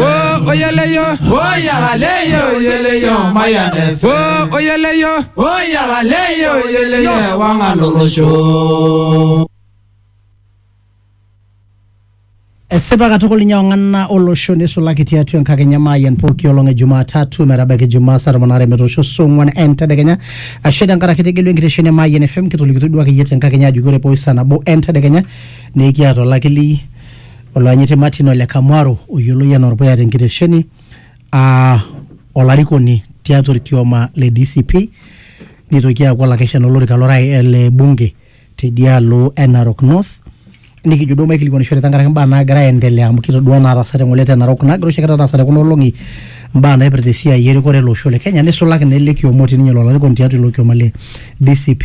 o oyeleyo o yalaleyo oyeleyo mayanefe o oyeleyo o yalaleyo oyeleyo wangalolosho esipa katukul ninye ong'ana olosho neisulaki tiatua enkakenya maayian pooki olong e jumatatu metabaiki jumaa saa tomon aare metoosho saa ong'uan entedekenya ashe tenkaraki tegelu enkitesheni e maayian fm kitolikitoi duo akeyie tenkakenya ajoki ore pooki saa nabo entedekenya nikiata olakili Oloanyiti Martin Ole Kamwaro oyioloi anaa Orpuya tenkitesheni aa olarikoni tiatua orkioma le DCP nitoki aaku olakeshani olorika lorai le bunge tedialo e Narok North nikijo duo maikilikuanishore tenkaraki imbaa naagira aendelea amu kitodua inaataasate ng'ole te Narok nagira oshi ake taata aasa te kuna olong'i imbaa naipirta esiai erikore ele osho le Kenya nisulaki naa ele kioma otii ninye ilo arikoni tiatua ilo kioma le DCP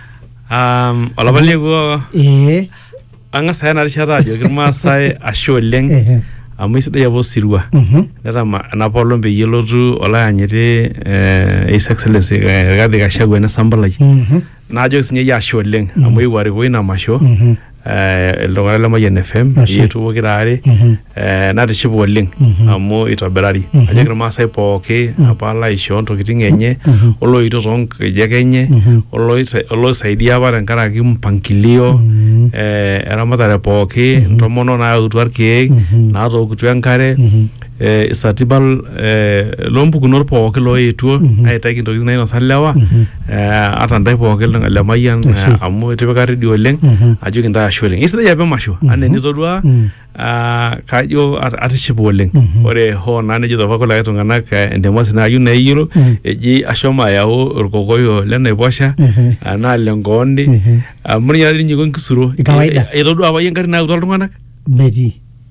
Um, olapa liekuo ee ang'as aya ena rishata ajoki irmaasai ashe oleng Ehe. amu isidai apa osirua Mhm. netama enapa olong peyie elotu olayanyiti eh, His Excellency eh, Rigathi Gachagua enesambulai Mhm. naajoki sinye iyie ashe oleng amu eewuo arikoo ina masho Mhm. eh, iltung'anak le Mayian FM Ashe. yetu pokira are Mhm. eh, natishipa oleng Mhm. amu itobirari Mhm. ajoki irmaasai pooki apa laishoo ntokitin enye Mhm. oloito toonkejek enye Mhm. oloisa- oloisaidia apa tenkaraki mpangilio Mhm. eh, eramatare pooki ntomono naautua irkeek Mhm. naatookutua enkare Mhm. eh, isatipal eh, loompukunot pooki looetuo Mhm. aitaki intokitin nainosa lewa Mhm. eh, ata ntae pooki lemayian Ashe. eh, amu itipika redio oleng Mhm. ajo kintae ashe oleng isidai apa emasho Mhm. anaa enitodua Mm. ah, kajo at- atishipa oleng Mhm. ore hoo naa nejo apa kulikae tung'anak eh, entemasi naayieu neyiolo Mm. eji ashomo ayau orkokoyo lenaiposha Ehe. anaa lenkooni Ehe. amu ninye ninye iko enkisuro Kawaida. Eh, eh, itodua apa yie engarri nayautua iltung'anak metii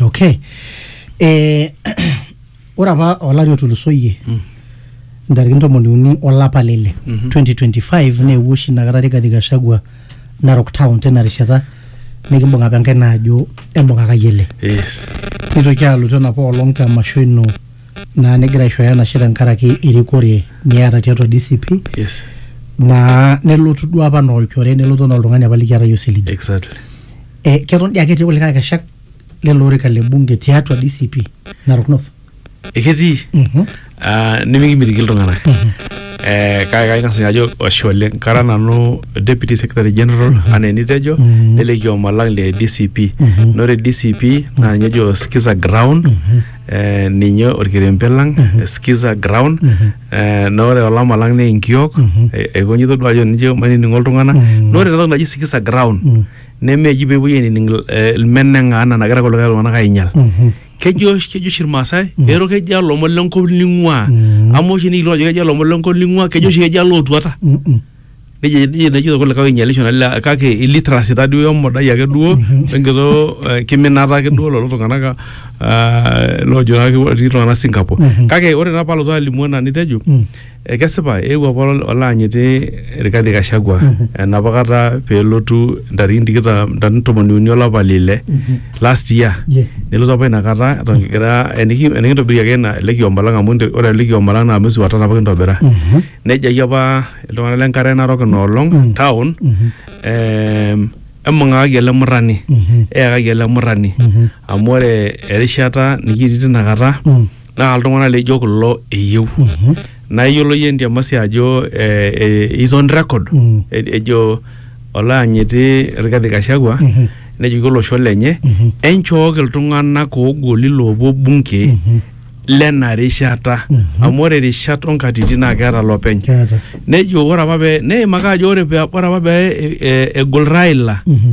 Okay. Eh, ore apa olari otulusoyie ntarikini ntomoni uni olapa le ile 2025 neewuo oshi inakata Rigathi Gachagua Narok Town tina rishata nikimbung apa enkaina aajo embung'akaki ele Yes. nitoki alotu enapa olong te masho ino naa nigira aishooyo enashe tenkaraki erikore niata tiatua DCP Yes. naa nelotu duo apa anaa olchore nelotu anaa oltung'ani apa likiata yie osiligi Exactly. eh, keton dii ake etii kulikae akeshak lelo orika le bunge tiatua DCP Narok North. Eketii Mhm. ah, nimikimitiki iltung'anak Eh, kake kang'as ninye ajo ashe oleng kara nanu deputy secretary general anaa enitejo Mhm. nele kioma lang le DCP Mhm. na ore DCP naa ninye ejo skiza ground eh, ninye orkerembe lang skiza ground Mhm. eh, na ore olama lang naa enkiok Mhm. eh, aikonji itodua ajo ninche mainining'o iltung'anak Mhm. na ore enatoki naji skiza ground Mhm. nemeji pepuoi ainining eh, ilmeneng'a anaa nagira kulikae tung'anak ainyal kejo kejo oshi irmaasai ero kejo alomon lenkop ling'ua amu oshi nikitum ajo kejo alomon lenkop ling'ua kejo oshi kejo alootuata nejia nejia nejito kulikae oinyialisho nalila kake illiteracy taduo we modai ake duo wenkito eh, kiminata ake duo lolo tung'anak ah, loojo naa ketii iltung'anak Singapore kake ore naa palotu alimu ena nitejo Ekesipa eewuo apa olaanyiti Rigathi Gachagua enapa kata peelotu ntarikini tikitam ntarikini tomoni uni olapa le ile last year Yes. nelotu apa inakata eton kigira eniki- enikintobirie ake ina ele kioma lang amu inte- ore ele kioma lang naa mwezi wa tano apa kintobira nejaki apa iltung'anak le nkare narok ina olong town em, embung'akaki ele murrani eyakaki ele murrani amu ore erishata nikitii tinakata naa iltung'anak leijo kulo eyieu Mhm. naa iyiolo iyie entiamasi ajo eh, eh, is on record Mm. E- ejo olaanyiti Rigathi Gachagua Mhm. nejoki olosho lenye Mhm. enchooki iltung'anak oogoli loopuo bunge Mhm. lena rishata Mhm. amu ore rishat onkatitin naa keeta lopeny Keeta. nejo ore apa pee neimaka ajo ore pee ore apa pee e- e- egol Raila Mhm.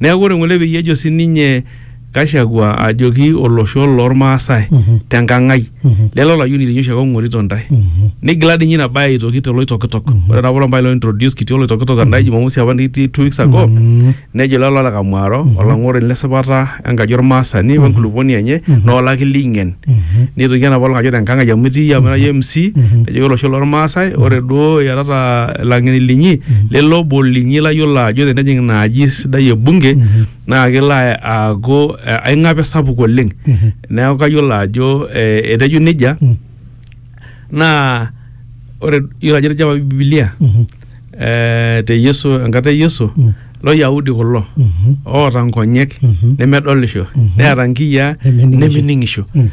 Neaku ore ng'ole peyie ejo sininye Gachagua ajoki olosho loolmaasai tenkang ai lele olayioni linyi oshiake ong'orito ntae. Nigila dii ninye ina bae aitoki te Loitokitok. Ore taapa olpae lointroduce kitii Oloitokitok endai jumamosi apa nikitii two weeks ago nejo lelo oota Kamwaro olang'oroni le sipata enkaji olmaasani wenkulupuoni enye naa olaki leingen. Neitoki anap oleng ajo tenkang ai amu itii amu ira iyie MC nejoki olosho lormaasai ore duo iatata ilang'eni linyi lele obo linyi layiolo ajo tenejing ina aji sidai e bunge naa kelo aaku aing'ape sapuk oleng neeku kayiolo ajo eh etejo nejia naa ore iyiolo ajo etejo apa bibilia eh, te Yesu enkata e Yesu Mm. lo Yahudi kulo Mhm. oota nkonyek Mhm. nemedolisho Mhm. neeta nkiyiaa Nemening'isho. nemening'isho Mm.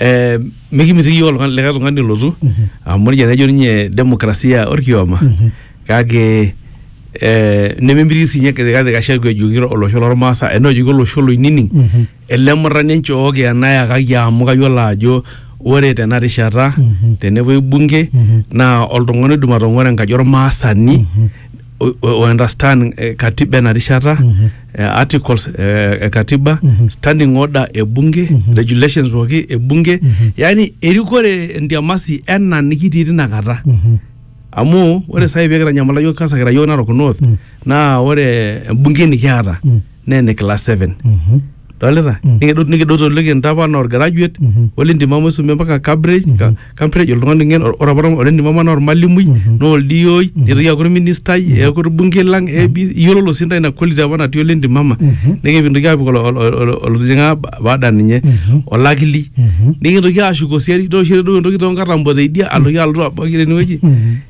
Eh, mikimitiki yiok oltung'ani- likae tung'ani olotu Mhm. amu nejia nejo ninye demokrasia orkioma Mhm. kake eh, nememitiki sinye kati kashaku ejoki olosho lormaasa enaa ejoki olosho loinining Mhm. ele murrani enchooki enayakaki amu kayiolo ajo ore tena rishata Mhm. tenepuoi bunge Mhm. naa oltung'ani oidim atong'ora enkaji ormaasani o- o- o understand eh, katiba ena rishata Mhm. eh, articles eh, e katiba Mhm. standing order e bunge Mhm. regulations pooki e bunge Mhm. yaani erikore entiamasi ena nikitii tina kata Mhm. amu ore sai pee kitanyamala yiok kasa kira yiok Narok North Mm. naa ore embunge nikiata Mm. naa ene class seven Mhm. dolita Mm. nikido- nikidoto liki ntapa naa orgraduate Mhm. ole ntimama isumie mpaka Cambridge ka- Cambridge oltung'ani ng'en or- ore apa ole ntimama naa ormalimui Mhm. naa oldioi nitoki aaku orministai eeku orbungei lang AB iyiololo sii ntae ina quality apa natii ole ntimama Mhm. nikimpintoki aapik olo- olo- olo- olotijing'a ba- baada ninye Mhm. olakili Mhm. nikintoki aashuko siadi nitoki aisho ereduo entoki toonkatambo teidia aloki alotu abaki tenewueji Mhm.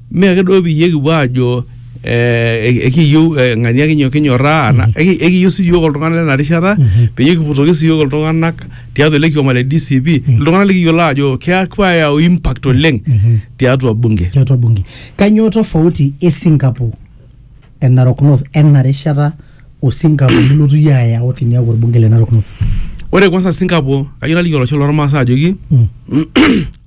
Mme ake duo peyie kipuo aajo eh, ekiyieu eh, ng'ania kinyo- kinyorraa ana eki- ekiyieu sii iyiook oltung'ani lena rishata peyie kiputoki sii iyiook iltung'anak tiatua ele kioma le DCP iltung'anak likiyiolo aajo keaku ayau impact oleng tiatua bunge. tiatua bunge. Kanyoo tofauti e Singapore e Narok North ena rishata o Singapore nilotu iyie ayau tiniaku orbunge le Narok North? Ore kwanza Singapore, kayieu naliki olosho lormaasai ajoki Mm.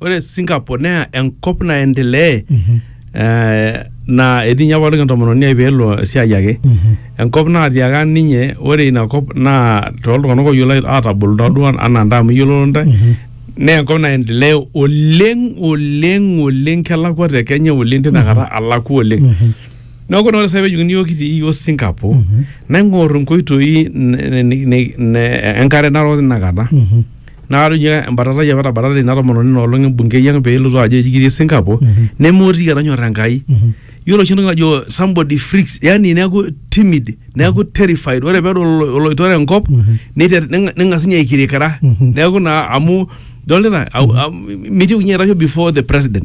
ore Singapore naa enkop naendelea Mhm. eh, naa etii ninye apa oltung'ani entomononi ai peelo esiai ake Mhm. enkop naatiaka ninye ore ina kop naa tooltung'anak oyiolo aatabol taaduo anaa ntae amu iyiololo ntae Mhm. naa enkop naendelea oleng oleng oleng kelakua te Kenya oleng tinakata alakua oleng Mhm. Neeku ore sai pejokini iyiook kitii iyiook Singapore naing'or inkoitoi n- n- n- n- enkare narok tinakata naa ore ninye embatatai apa etabatate ina tomononi ina olong embungei ang peelotu ajo eji kitii Singapore nemeotiki etonyorra Enkai yiolo oshi entoki najo somebody freaks yani neeku timid neeku terrified ore peedol olo- oloitore enkop neiter- neng- neng'as ninye aikirikira neeku naa amu idolita au- am- mitiu ninye aitasho before the president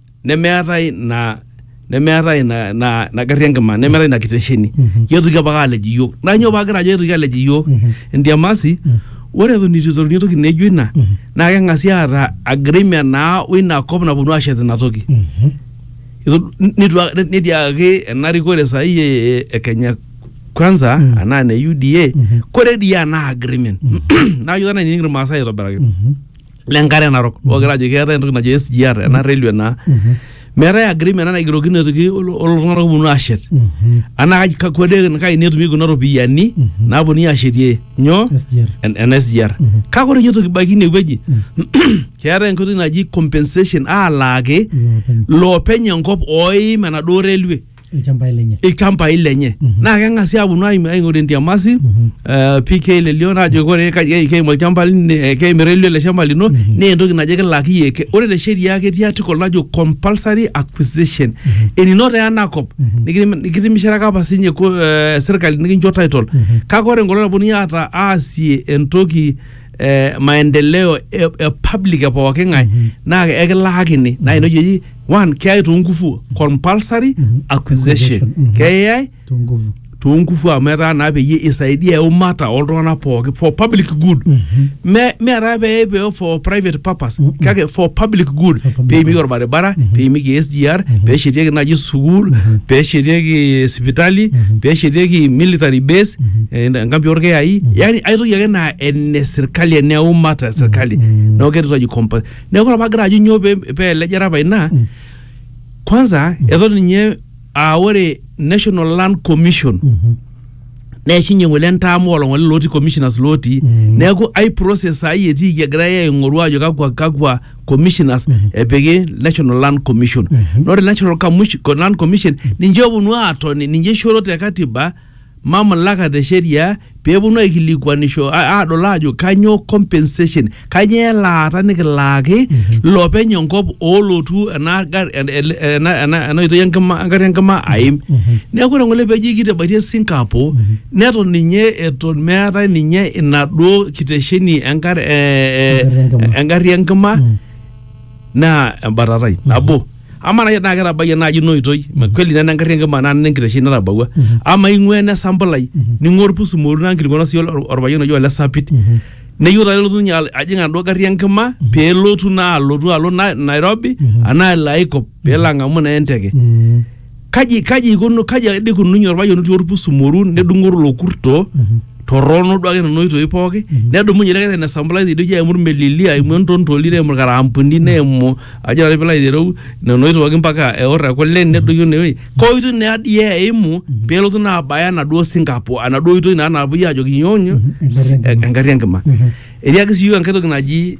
nemeetae ina nemeetae ina ina ina garri enkima nemeetae ina kitesheni ketoki apake alej iyiok naa nyoo paagira ajo etoki alej iyiok entiamasi ore eton itu iteruni entoki nejo ina naa keng'asi aata agreement naa woina kop naponu ashet ina toki Itu- nitu a- netiakaki ena rikore sahi e- e Kenya kwanza anaa ne UDA kore dii ena agreement naa yiok tena inining irmaasai aitobiraki le nkare narok ogira ajo keetae entoki najo SGR ena railway naa meetae agreement ena naigirokino aitoki olo- olo tung'anak oponu ashet anaa kaji kakwa de kaini etumi kuna ropiyiani naponunui ashetie nyoo SGR. en- ena SGR kake ore inye toki baiki inewueji keetae enkoitoi naji compensation alaaki Iloopeny. loopeny enkop oim enaduo railway ilchambai lenye ilchambai lenye Mhm. naa keng'asi aaponu aim- aing'oru entiamasi Mhm. eh, PK lelio naajo ore ka- ke- keim olchamba lini- eh, keimira elio ele shamba lino Mhm. naa entoki najo kilaki yie Ke- ore te sheria ketii article najo compulsory acquisition eninoto enakop Mhm. nikitim- nikitimisharaka apa sinye ko- eh, serkali nikincho title Mhm. kake ore enkolong naponu aata aasie entoki eh, maendeleo e, e public e pooki ng'ae naa ekilaakini naa ina oshi eji one keyai toonkufu compulsory acquisition Mhm. keyai Tunguvu. toonkufu amu etaa naa peyie isaidia eumata oltung'anak pooki for public good me meetaa pee pee for private purpose kake for public good For public peimieki good. orbaribara peimieki SGR peeshetieki naaji sukuul peeshetieki sipitali peeshetieki military base eh, enkampi orkeyai yani aitoki ake naa ene sirkali ene umma te sirkali neeku ketii toji compa neeku ore pagira ajo nyoo pee pee elejare apa ina kwanza eton ninye aa ore national land commission neishunye ng'ole entaam olong'ole lotii commissioners lotii Mm. neeku ai process ai etiiki egirai aing'oru ajo kakwa kakwa commissioners epiki national land commission Mhm. na ore national Commission- land commission ninche oponu aatoni ninche ishoro te katiba mamlaka te sheria pee eponu aikilikuanisho a- aadol aajo kanyoo compensation kanyoo elaata nikilaaki lopeny enkop oolotu ena gar- en- ele- ena- ena ena oitoi enkima engarri enkima aim neeku ore ngole peji kitabaitie Singapore neton ninye eton meetae ninye inaduo kitesheni engar- eh, eh, Engarri enkima. engarri enkima naa embatatai nabo amaa naaji tenaa ketabayie naaji ina oitoi kweli nena engarri enkima naa nena enkitesheni natabawua amaa ing'ua ene sampulai ning'ua orpusu moru naa nkilikuana sii ol- orpayian oji ole sapit neyieu taa nelotu ninye al- ajing enaduo garri enkima pelotu naa alotu alo na- Nairobi anaa elo ae kop peelo ang'amu naa enteke kaji kaji ikuno kaji ade ikununye orpayian otii orpusumoru nedung'oru ilo kurto torrono duake nena oitoi pooki nedumunye ele kete nesambulai tidie aimu irmelili aimu entontoli neimu irkarambuni neimu ajo nanu piilo aitereu nena oitoi pooki mpaka eor ekule nedoyio inewueji koitoi naa dii eimu pelotu naa abaya enaduo sinkapo enaduo oitoi naa napuoi ajoki inyoo nyoo engarri enkima etiaki sii iyiok enkae toki naji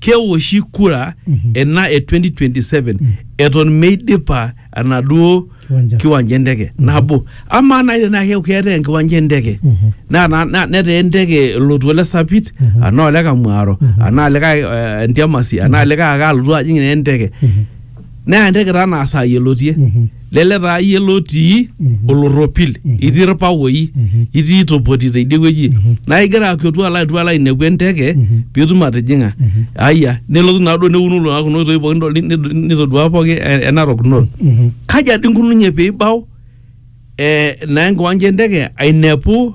keoshi kura ena e 2027 eton meidipa enaduo Kiwanja. kiwanja enteke nabo amaa nai tenaa keeku keetae enkiwanja enteke na- na- na- netaa enteke elotu ole sapit anaa ole kamwaro anaa likae eh, ntiamasi anaa likae ake alotu ajing naa enteke naa enteke taa naa saai elotie lele taa iyie lotii olorropil itii irpawoi itii itopoti teidie wueji naa igira akiotu alo atua alo ainepu enteke piitum atijing'a aya nelotu naaduo neuno lelo kuna oitoi pookin nidol- nid- nitodua pooki e- enarok north kaja dii inkununye piibau eh, naa enkiwanja enteke ainepu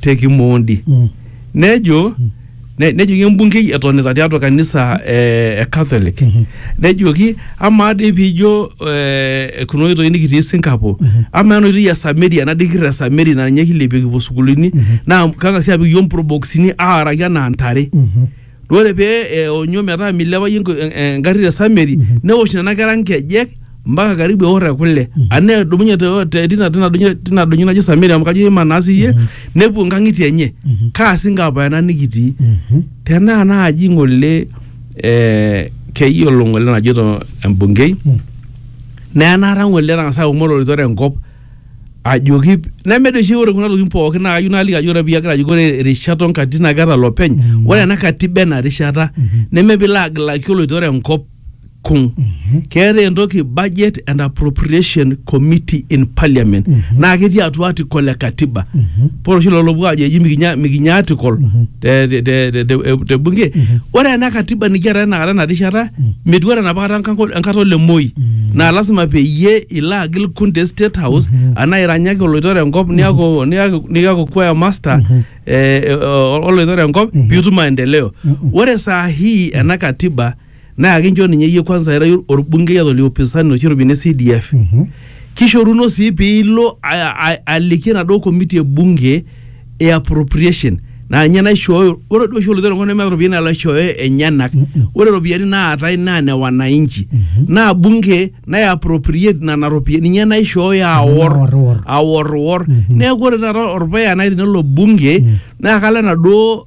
te Kimondi nejo ne- nejoki embungei etonita tiatua kanisa eh, e Catholic nejoki amaa dii piijo eh, kuna oitoi nikitii Singapore amaa ena oitoi e Samaria ena dii kirra e Samaria naa ninye kilepie kipuo sukuulini naa kang'asi apik iyiook mproboksini aaraki anaa ntare Ore pee eonyo metaa milepayu engari te sameri neosh nena kera nkejek mpaka karibu eor ekule anaa edumunye tina doinyo naji sameri amu kajo iima naa siyie nepuo nkangitie enye kaa singo apa ena nikitii tenaa naaji ngole ee keyiolo ngole enajoito embungei naa enaata ngole etangasa aumore olitore enkop ajoki neme doi oshi ore kuna tokitin pookin naa kayieu naaliki ajo ore piyie agira ajoki ore irishat onkatitin naa keeta lopeny Mm. ore ena katiba ena rishata Mhm. neme piilo agilaki oloito ore enkop kung keetae entoki budget and appropriation committee in parliament Mhm. naa ketii atua article e katiba Mhm. pore oshi lolo opuo ajo eji mikinya mikinya article Mhm. te- te- te- te- te- te bunge ore ena katiba nikiata enakata ena rishata metiu ore enapa kata enkanko- enkata ole Moi naa lasima peyie ilo agil kun te state house anaa iranyaki oloitore enkop niaku niaku niaku choir master eh, eh, oloitore enkop piitum maendeleo ore saa hii ena katiba Naa kincho ninye iyie kwanza ira orbungei ata oliopisani oshi otii ene CDF. Kishoruno sii piilo a- a- aliki enaduo komiti e bunge e appropriation naa ninye naishooyo ore duo oshi oloitore enkop nemeeta iropiyiani nalo aishooyo enyenak. Ore iropiyiani naatae naa ne wananchi. Naa bunge nai appropriate nena ropiyiani ninye naishooyo aor Aorwor. aorwor. Neeku ore taata orpuya nai tenelo bunge naa kalo enaduo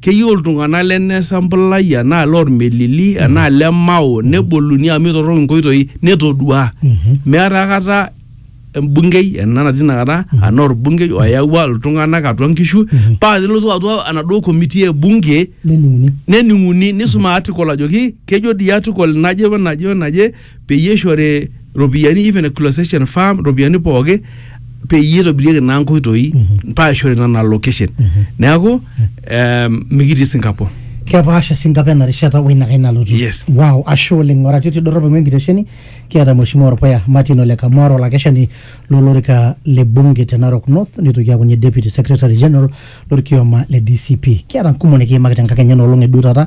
keyieu iltung'anak le ne Sambulai enaa loo Lmelili enaa le Mao neboluni amu eitorrok inkoitoi netoduaa. Meeta aikata embungei ena natii inakata enaa olbungei oyawua iltung'anak atua nkishu paa tenelotu atua enaduo committee e bunge nening'uni. Nening'uni neisum article ajoki kejo dii article naje wenaje wenaje peyie eishori ropiyiani even a clossation farm ropiyiani pooki peyie eitobirieki naa nkoitoi mpaka eishori nena location neeku em, mikitii Singapore kepaasha Singapore ena rishata o ina kai nalotu Yes. wow ashe oleng oratioti dorrop aing'ua enkitesheni kiata mheshimiwa orpuya Martin Ole Kamwar olakeshani lolorika le bunge te Narok North nitoki aaku ninye deputy secretary general lorkioma le DCP kiata nkumok nikiimaki tenkakenya enoolong eduo taata